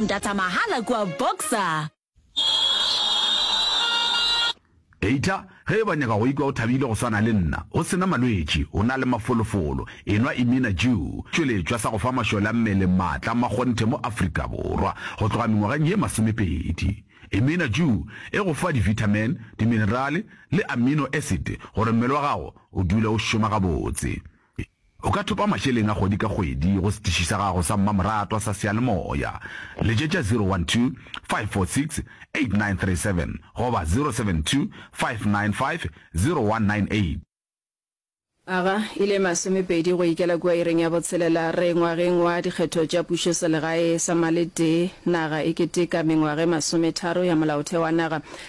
Data mahala kua Boxer. Eitla ge eba o nyaka go ikwa o thabile go swana le nna, o se na malwetši, o na le mafolofolo, enwa Imina Jew, tšweletšwa sa go fa mašole a mmele maatla a makgonthe mo Afrika Borwa go tloga mengwageng ye masomepedi. Imina Jew e go fa divithamene, diminerale le amino esite gore mmele wa gago o dule o šoma gabotse. O ka thopa mašeleng a kgwedi ka kgwedi go setiši sa gago sa mmamoratwa sa seyalemoya. Letšetša 012 546 8937 goba 072 595 0198. Aga e le masomepedi go ikela kua ireng ya botshelela re ngwageng wa dikgetho tša pušoselegae sa maletee, naga e keteka mengwage masometharo ya molaotheo wa naga.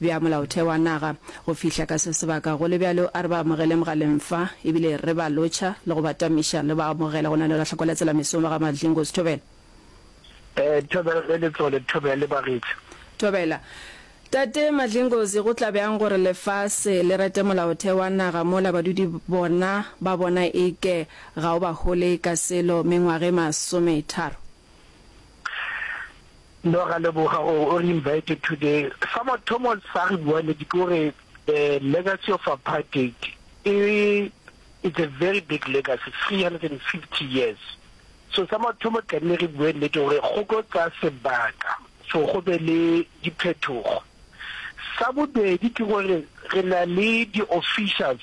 bja molaotheo wa naga. Go fihla ka se sebaka, go le bjalo, a re ba amogele mogaleng fa, e bile re ba lotšha le go ba tamiša le ba amogela go na le go lahla kwa letselamesong ba ga Madlingozi. Thobela. Ee, Thobela le Letsole. Thobela le bagetša. Thobela. Tate Madlingozi, go tla bjang gore lefase le rate molaotheo wa naga mola badudi bona ba bona e ke ga o ba hole ka selo mengwaga e masometharo? No ra leboga gore o re invited today. Sa mathomo sa re bua le ke gore the legacy of apartheid e it's a very big legacy 350 years. So sa mathomo tlamehile re bue nnete gore go tlo tsaya sebaka for go be le diphetogo. Sa bobedi ke gore re na le di officials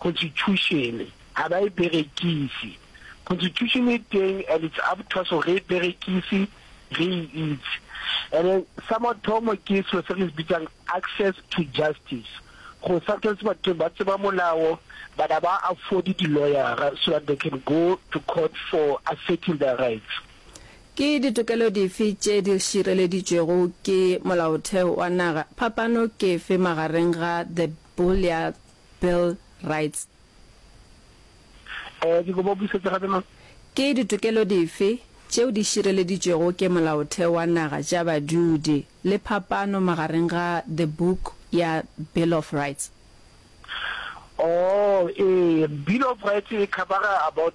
Constitutione ga ba e berekise. Constitutione e teng and it's up to us gore re e berekise, re e itse. And then sa mathomo ke selo se re se bitsang access to justice, gore sometimes batho ba tseba molao but ga ba afford di-lawyer-ra so that they can go to court for asserting their rights. Ke ditokelo dife tše di šireleditšwego ke molaotheo wa naga? Phapano ke efe magareng ga the Bill ya Bill Rights. Ee, ke kopa o busetse gape, Mang? Ke ditokelo dife tšeo di šireleditšwego ke Molaotheo wa Naga tša Badudi, le phapano magareng ga The Book ya Bill of Rights? Oo, ee, Bill of Rights e khabara about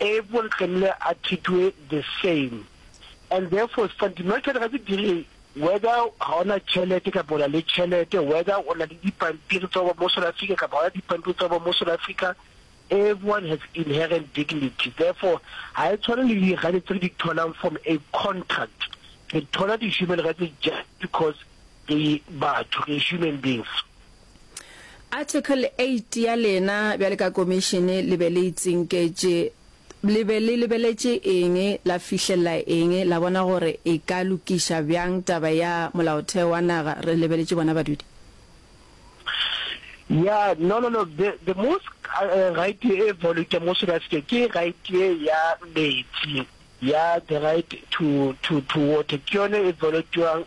Everyone tlamehile a treatwe the same and therefore is fundamental ga se dire whether ga o na tšhelete kapa o na le tšhelete, whether o na le dipampiri tsa go ba mo South Africa kapa ga o na dipampiri tsa go ba mo South Africa, everyone has inherent dignity. Therefore ga e tshwane le di rights tse re di tholang from a contract, re thola di human rights just because re batho, re human beings. Article eight ya lena bjale ka Komišene le be le itsinketše, le be le lebeletše eng, la fihlelela eng, la bona gore e ka lokiša bjang taba ya Molaotheo wa naga re lebeletše bona badudi? Ya, no, no, no, the, the most uh, right e evolute mo South Africa ke right ye ya metsi, ya the right to, to, to water, ke yone e evolutewang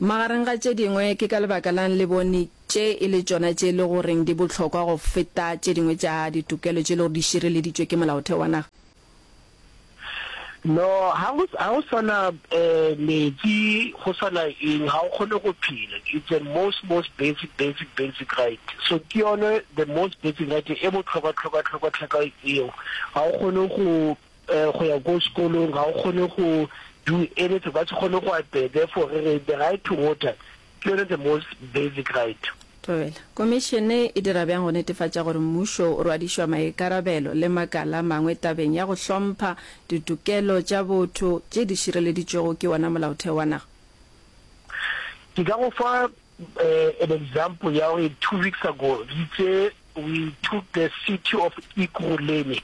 Magareng ga tše dingwe, ke ka lebaka la'ng le bone tše e le tšona tše e le goreng di bohlokwa go feta tše dingwe tša ditokelo tše e le gore di šireleditšwe ke Molaotheo wa naga? No, ha go, ha go sa na meetse, go sa na eng, ga o kgone go phela. It's the most, most basic, basic, basic right. So ke yone the most basic right e bohlokwa, hlokwa, hlokwa, hlokwa eo. Ga o kgone go. go ya ko sekolong ga o kgone go do anything ba se kgone go apea therefore re re the right to water ke yone the most basic right. Thobela, Komišene e dira bjang go netefatša gore mmušo o rwadišwa maikarabelo le makala a mangwe tabeng ya go hlompha ditokelo tša botho tše di šireleditšwego ke wona molaotheo wa naga? Ke ka go fa An example ya gore two weeks ago re itse we took the city of Ekurhuleni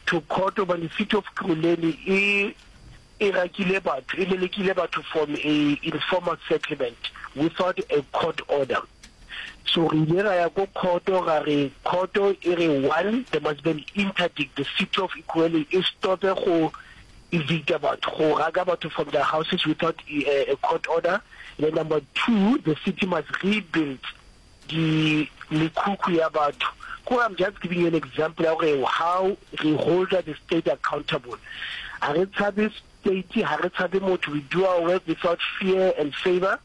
to court gobane city of Ekurhuleni e e rakile batho, e lelekile batho from a informal settlement without a court order. So re ile ra ya ko khoto ra re khoto e re one there must be an interdict the city of Ekurhuleni e stop-e go evict-a batho, go raka batho from their houses without a court order, le number two, the city must rebuild di mekhukhu ya batho. Kore I'm just giving you an example ya gore how re holder the state accountable. Ha re tshabe state, ha re tshabe motho, we do our work without fear and favour.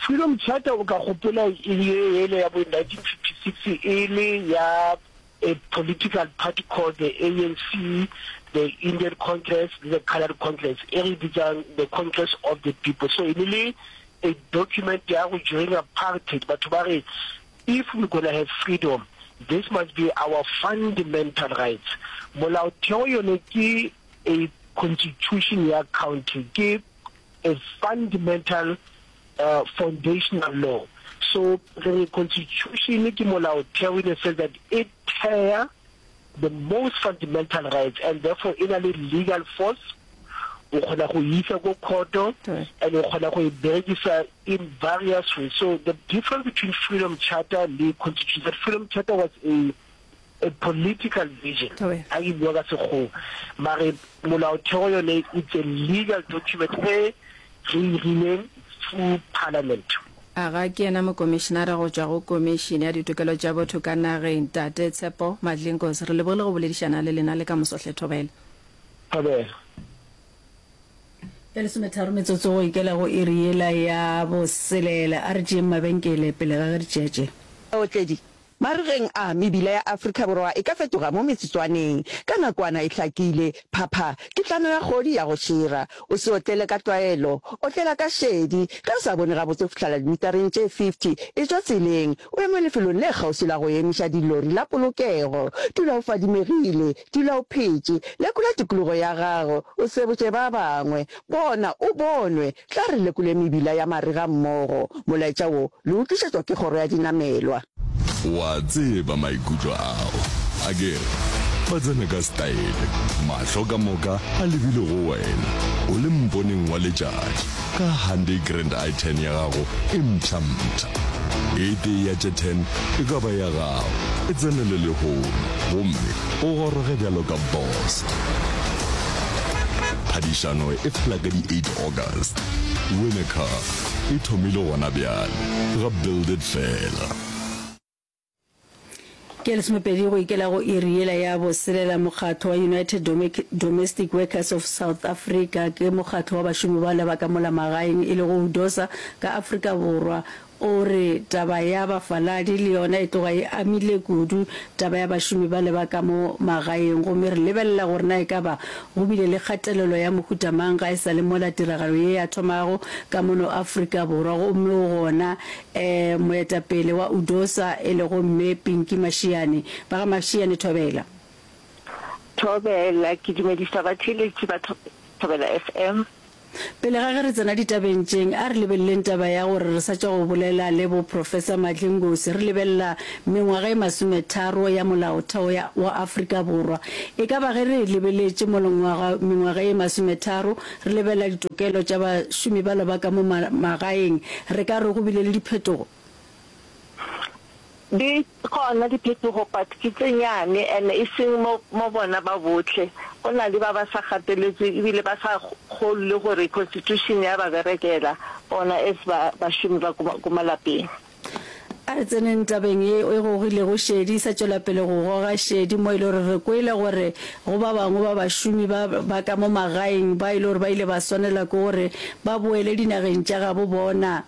Freedom Charter o ka gopola e le ye yele ya bo 1956 e le ya a political party called the ANC, the Indian Congress le the Coloured Congress e re bitsang the Congress of the People. So e ne le a document ya go during apartheid batho ba re if we gonna have freedom this must be our fundamental rights. Molaotheo yone ke a constitution ya country ke a fundmental foundational law so re re constitution ke molaotheo in a sense that e thea the most fundamental rights and therefore e na le legal force o kgona go isa go khoto and o kgona go e berekisa in various ways so the difference between freedom charter le constitution that freedom charter was a a political vision a ke bua ka sekgowa mare molaotheo yone it's a legal document e re e rileng through parliament. A ga ke yena mokomišenara go tšwa go Komišene ya Ditokelo tša Botho ka nageng, Tate Tshepo Madlinkos? Re lebogile go boledišana le lena le ka moso hle Thobela. Thobela. Ya lesometharo metsotso go ikela go iri yela ya boselela, a re tšeeng mabenkele pele ga ge re tšeatšea. Baotledi Marigeng a, mebila ya Afrika Borwa e ka fetoga mo metsotswaneng. Ka nakwana e hlakile, phapha ke tlano ya kgodi ya go šira. O se otlele ka tlwaelo, otlela ka šedi. Ge o sa bone gabotse go fihlela dimitareng tše 50, e tšwa tseleng, o eme lefelong le kgauswi la go emiša dilori la polokego. Dula o fadimegile, dula o phetše, lekola tikologo ya gago, o sebotše ba bangwe. Bona o bonwe, Tla re lekole mebila ya marega mmogo. Molaetša wo le o tlišetšwa ke Kgoro ya Dinamelwa. O a tseba maikutlo ao, a ke re? Ba tsena ka style, mahlo ka moka a lebile go wena, o le mponeng wa letšatši, ka Hyundai Grand i10 ya gago e mpshampsha. E tee ya tše ten e ka ba ya gago, e tsenele lehono, gomme O goroge bjalo ka boss. Phadišano e fela ka di 8 August. Win a car e thomile gona bjale ga Build It fela. Ke lesomepedi go ikela go iri yela ya boselela. Mokgatlo wa United Domestic Workers of South Africa ke mokgatlo wa bašomi ba lebaka mola magaeng e lego UDOSA ka Afrika Borwa O re, Taba ya bafaladi le yona e tloga e amile kudu taba ya bašomi bale ba ka mo magaeng gomme re lebelela gore na e ka ba go bile le kgatelelo ya mohuta mang ga e sa le mola tiragalo ye ya thomago ka mono Afrika Borwa gomme o gona um moetapele wa UDOSA e lego Mme Pinky Mashiane. Ba ga Mashiane Thobela. Thobela, ke dumedisa batheeletši ba Thobela FM. Pele ga ge re tsena ditabeng tšeng, a re lebeleleng taba ya gore re sa tšwa go bolela le bo Professor Madli Ngosi re lebelela mengwaga e masometharo ya Molaotheo ya wa Afrika Borwa. E ka ba ge re e lebeletše molongwaga mengwaga e masometharo re lebelela ditokelo tša bašomi bala ba ka mo ma magaeng, re ka re go bile le diphetogo? Di Gona diphetogo but ke tše nyane and e seng mo mo bona ba bohle. Go na le ba ba sa gateletswe ebile ba sa kgolwe gore constitution ya ba berekela bona as ba bašomi ba ko ko malapeng. A re tseneng tabeng ye e gogilego šedi e sa tšwela pele go goga šedi mo e le gore re kwele gore go ba bangwe ba bašomi ba ba ka mo magaeng ba e le gore ba ile ba swanela ke gore ba boele dinageng tša gabo bona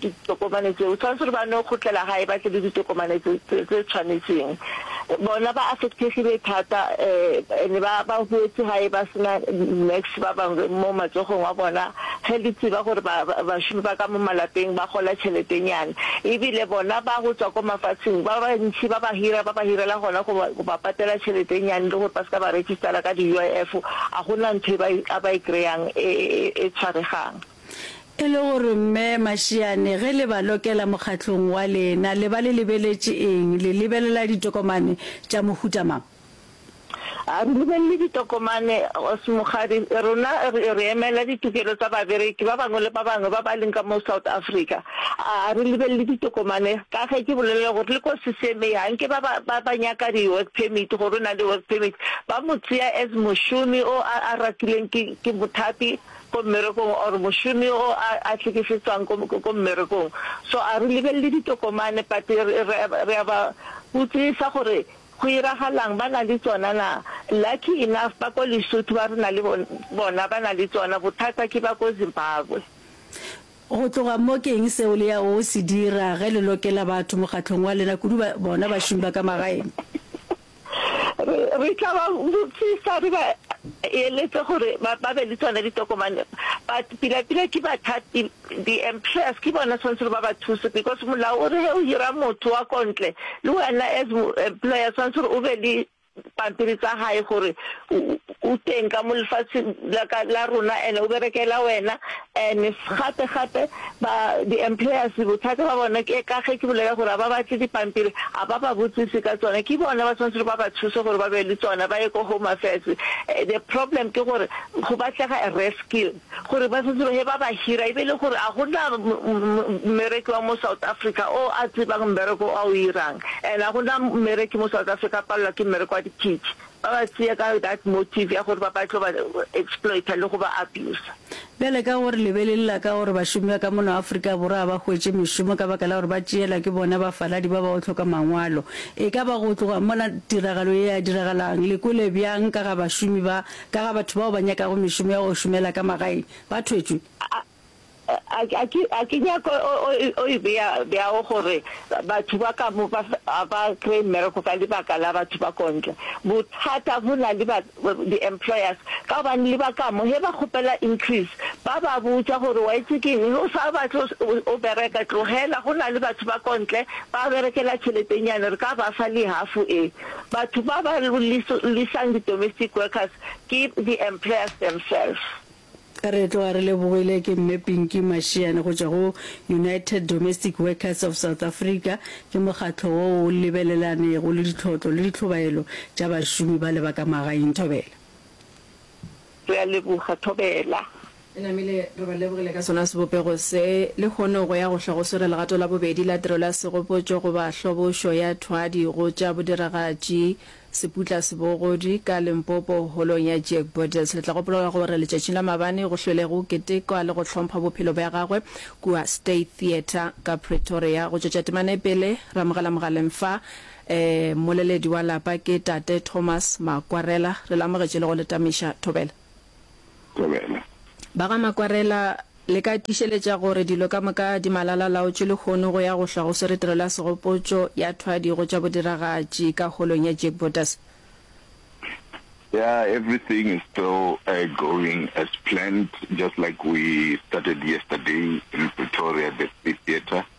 ditokomane tseo, tshwanetse gore ba no khutlela gae ba tle le ditokomane tse tse tshwanetseng. Bona ba affectegile thata um and ba ba huetse gae ba sena nurse ba bangwe mo matsogong a bona, ge le tseba gore ba bašomi ba ka mo malapeng ba gola tšheletenyana ebile bona ba go tswa ko mafatsheng ba bantši ba ba hira ba ba hirela gona go ba go ba patela tšheletenyane le gore ba se ka ba registera ka di-UIF, a go na ntho e ba e a ba e kry-ang e e e tshwaregang. E le gore Mme Mashiane ge le ba lokela mokgatlong wa lena le ba le lebeletše eng, le lebelela ditokomane tša mohuta mang? A re lebelele ditokomane Ausi Mokgadi, rena re emela ditokelo tsa babereki ba bangwe le ba bangwe ba ba leng ka mo South Africa. A re lebelele ditokomane ka ge ke bolelela gore le ko CCMA ga nke ba ba ba nyaka di work permit gore o na le work permit ba mo tseya as mošomi o a a rakileng ke ke mothapi ko mmerekong or mošomi yo a hlekefetswang ko mmerekong. So a re lebelele ditokomane but re a ba botsisa gore go iragalang, ba na le tsona na. Lucky enough ba ko Lesotho ba re na le bona ba na le tsona, bothata ke ba ko Zimbabwe. Go tloga mo ke eng seo le yago go se dira ge le lokela batho mokgatlong wa lena, kudu bona bašomi ba ka magaeng? Re tla ba botsisa re ba eletse gore ba be le tsone ditokomane but pila pila ke bathati di-employers ke bona tshwanetse ba ba thuse because molao o re he o hira motho wa kontle le wena as employer tshwanetse gore o be le pampiri tsa gae gore O teng ka mo lefatsheng la ka la rona and o berekela wena and gape gape ba di employers bothata ba bona ke ka ge ke bolela gore ba batle dipampiri a ba ba botsise ka tsona ke bona ba tshwanetse ba ba thuse gore ba be le tsona ba ye ko home affairs eh, the problem ke gore go batlega a rescue gore ba setse he ba ba hira e be le gore a gona mmereki wa mo South Africa o a tsebang mmereko a o irang and a gona mmereki mo South Africa a palelwa ke mmereko wa dipitse Ba ba tsea ka that motive ya gore ba ba tlo ba exploiter le go ba abuser. Bjale ka gore le be le lla ka gore bašomi ba ka mona Afrika Borwa ga ba hwetše mešomo ka baka la gore ba tšeelwa ke bona bafaladi ba ba go hloka mangwalo, e ka ba go tloga mola tiragalo ye ya diragalang le kwele bjang ka ga bašomi ba, ka ga batho bao ba nyakago mešomo ya go šomela ka magaeng? Ba thwetšwe? A ke nyake o e bea bjao gore batho ba ka mo ba a ba kry-e mmereko ka lebaka la batho ba ko ntle? Bothata bo na le di-employers ka gobane le ba ka mo ge ba kgopela increase ba ba botša gore wa itse keng ge o sa batle o bereka tlogela go na le batho ba ko ntle ba berekela tšheletenyane re ka ba fa le half e. Batho ba ba lisang di-domestic workers ke di-employers themselves. Re tloga re lebogile ke Mme Pinky Mashiane go tšwa go United Domestic Workers of South Africa. Ke mokgatlo wo o lebelelanego le ditlhotlo le ditlhobaelo tša bašomi ba leba ka magaeng. Thobela. Re a leboga. Thobela. E namile, re ba lebogile ka sona sebopego se. Lehono go ya go hla go swere legato la bobedi la tirelo ya segopotšo goba hlobošo ya thwadi go tša bodiragatši. Seputla se bogodi ka Limpopo holong ya Jack Borders. Le tla gopola ka gore letšatšing la mabane go hlwele go ketekwa le go hlompha bophelo bja gagwe kua State Theatre ka Pretoria. Go tšwetša temana e pele, ramogela mogaleng fa um moleledi wa lapa ke Tate Thomas Makwarela. Re le amogetše le go le tamiša. Thobela. Thobela. Ba ga Makwarela, le ka tiišeletša gore dilo ka moka di malala-a-laotše lehono go ya go hlwa go swere tirelo ya segopotšo ya thwadi go tša bodiragatši ka holong ya Jack Bottas? Yeah, everything is still going as planned, just like we started yesterday in Pretoria at the Free Theatre.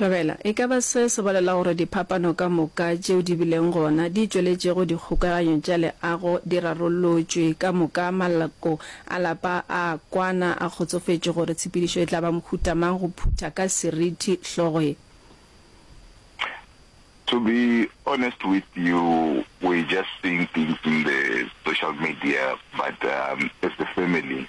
Tlogela. E ka ba se se bolela gore diphapano ka moka tšeo di bileng gona di tšweletšego dikgokaganyo tša leago di rarollotšwe ka moka, maloko a lapa a a kwana a kgotsofetše gore tshepedišo e tla ba mohuta mang go phutha ka seriti hlogo e. To be honest with you, we're just seeing things in the social media but as a family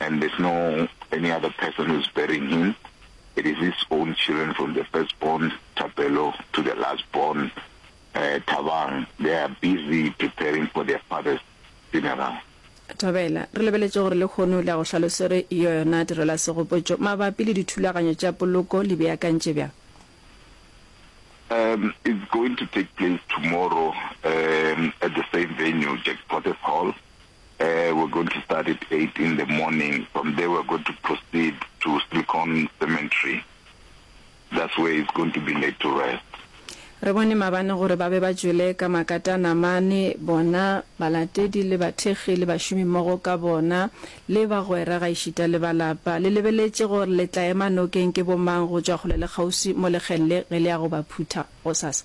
and there's no any other person who is burying him, it is his own children from the first born Thapelo to the last born uh, Thabang, they are busy preparing for their father's funeral. Thabela, re lebeletše gore lekgono le a go hlalosere yo yona direla segopotšo mabapi le dithulaganyo tša poloko le beakantše bjang? Um, it's going to take place tomorrow um, at the same venue, Jack Potter's Hall. Uh, we're going to start at eight in the morning. From there, we're going to proceed to Silicon Cemetery. That's where he's going to be laid to rest. Re bone mabane gore ba be ba tšwele ka makatana mane, bona, balatedi le bathekgi le bašomimmogo ka bona, le bagwera gaešita le ba lapa. Le lebeletše gore le tla ema nokeng ke bomang go tšwa kgole le kgauswi mo lekgeng le ge le ya go ba phutha gosasa.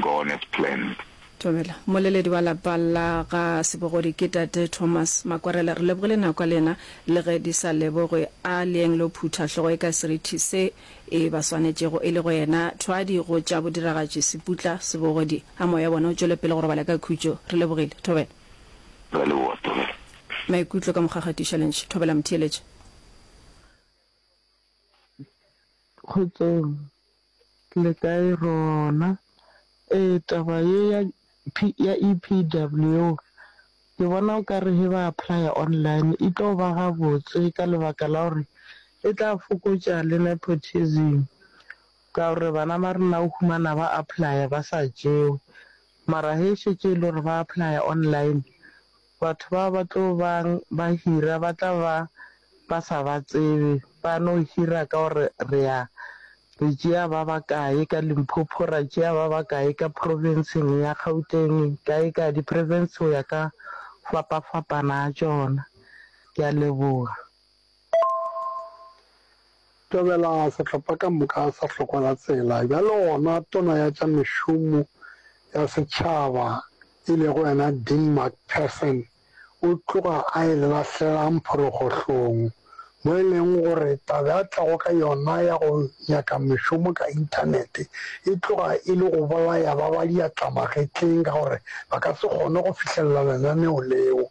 God has planned. Dumela. Moleledi wa lapa la ga Sebogodi ke Tate Thomas Makwarela. Re lebogile nako ya lena le ge di sa lebogwe. A leeng lo phutha hlogo e ka serithi se e ba swanetšego e le go yena thwadi go tša bodiragatši Seputla Sebogodi. A moya wa bona o tšwele pele go robala ka khutšo. Re lebogile. Thobela. Re a leboga. Thobela. Maikutlo ka Mokgakgatiša le ntšhe. Thobela Motheeletši. Kgotsong. le kae rona. Ee taba ye ya ya E_P_W ke bona o ka re he ba apply-a online e tlo ba gabotse ka lebaka la gore e tla fokotša le nepotism. Ka gore bana ba rena o humana ba apply-a ba sa tšewe mara he šetše e le gore ba apply-a online Batho bao ba tlo bang ba hira ba tla ba ba sa ba tsebe, ba no hira ka gore re a re tšea ba ba kae ka Limpopo, ra tšea ba ba kae ka profenseng ya Gauteng, kae kae, diprefense go ya ka go fapafapana ga tšona. Ke a leboga. Tobela sehlopha ka moka sa Hlokwa-la-tsela, bjalo gona Tona ya tša Mešomo ya Setšhaba e lego yena Dean McPherson o tloga a e lahlela mphorogohlong, mo e lego gore taba a tlago ka yona ya go nyaka mešomo ka Inthanete e tloga e le go bolaya ba ba diatlamagetleng ka gore ba ka se kgone go fihlelela lenaneo leo.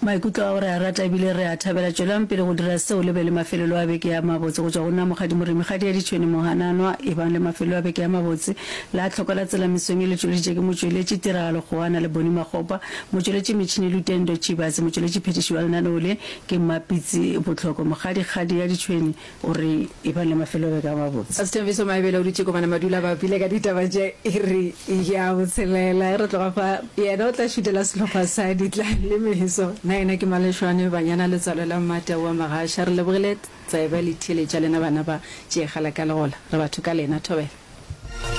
Maikutlo a go re a rata ebile re a thabela. Tšwelang pele go dira seo le be le mafelelo a beke a mabotse go tšwa go nna Mokgadi Moremi, Kgadi ya Ditšhwene Mohananwa. Ebang le mafelelo a beke a mabotse. La tlhoko la tsela mesong e le tšweleditše ke motšweletši tiragalo Kgoana le Boni Makgopa, motšweletši metšhini Lutendo Chibase, motšweletši phethiši wa lenaneo le ke Mmapitsi Botlhoko. Mokgadi Kgadi ya Ditšhwene. O re, E ba le mafelobeke a mabotse. Sithabiso Maebele o dutše Kobanamadula ba bile ka ditaba tša iri ya botshelela. Ge re tloga fa, yena o tla šutela sehlopha sa Ditlalemeso. Na yena ke Malešwane, Banyana, Letswalo la Mmata o a Magasha? Re lebogile tsebe le theeletša lena bana ba Tšeegala ka Legola. Re batho ka lena. Thobela.